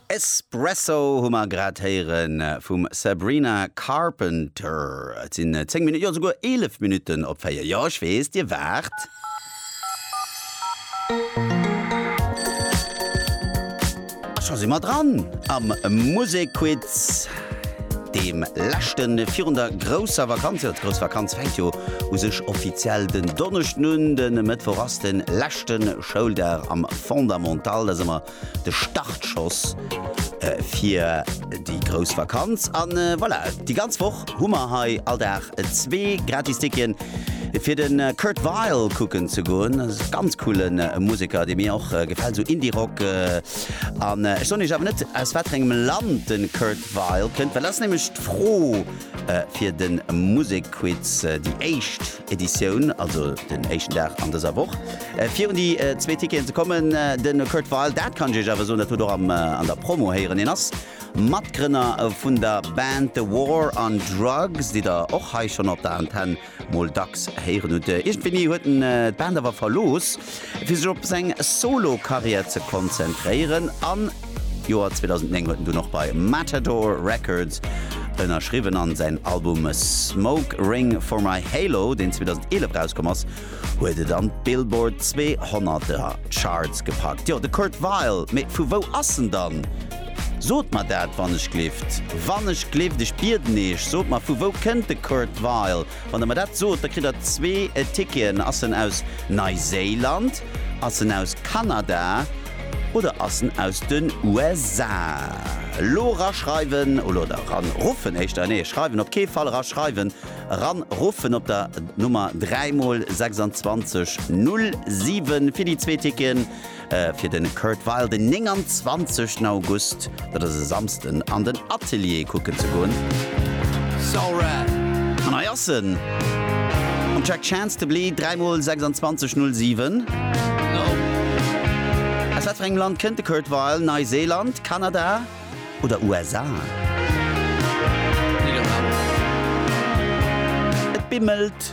Espresso hu mer grad héiere vum Sabrina Carpenter. Et sinn 10 Minutten, jo esouguer 11 Minutten op 4. Jo, ech weess, Dir waart. A scho si mer dran am Musekquiz, deem leschte virun der grousser Vakanz. Jo, d'grouss Vakanz fänkt jo u sech offiziell den Donneschden un. De Mëttwoch ass de leschte Schouldag am Fondamental, dat ass ëmmer de Startschoss fir déi grouss Vakanz. An voilà, déi ganz Woch hu mer hei all Dag zwee gratis Ticketen, fir de Kurt Weill kucken ze goen. Dat ass e ganz coole Museker, dee mir och gefält, esou Indie-Rock. An ech soen Iech awer net, aus wat fir engem Land de Kurt Weill kënnt, well dat ass nämlech d'Fro fir de Musekquiz, déi éischt. Editioun, also den éischten Dag an dëser Woch. Virun déi zwee Ticketen ze kommen, de Kurt Weill, dat kann ech iech awer soen, dat hutt och an der Promo héieren, hien ass Matgrënner vun der Band The War on Drugs, déi der och hei schonn op der Antenn mol dacks héieren hutt. Iergendwéini huet en d'Band awer verlooss. fir sech op seng Solo-Karriär ze konzentréieren. Am Joer 2009 huet en dunn och bei Matador Records ënnerschriwwen an säin Album Smoke Ring For My Halo, deen 2011 erauskomm ass, huet et an d'Billboard 200 Charts gepackt. Jo, de Kurt Weill, mee vu wou ass en dann? Sot mer dat, wann ech gleeft, wann ech gleeft, ech bieden eech, sot mer, vu wou kënnt de Kurt Weill? Wann der mer dat sot, da kritt der zwee Ticketen. Ass en aus Neiséiland, ass en aus Kanada oder ass en aus den USA? Elo eraschreiwen oder eran ruffen éischter, nee schreiwen op kee Fall, eraschreiwen, eran ruffen op der Nummer 3 mol 26 07 fir déi zwee Ticketen. Fir de Kurt Weill den 29 ten August, dat ass e Samsden, an den Atelier kucken ze goen. An hei ass en, um Track Chance to Bleed, 3 mol 26 07. Aus wat fir engem Land kënnt de Kurt Weill? Neiseeland, Kanada oder USA? Et bimmelt.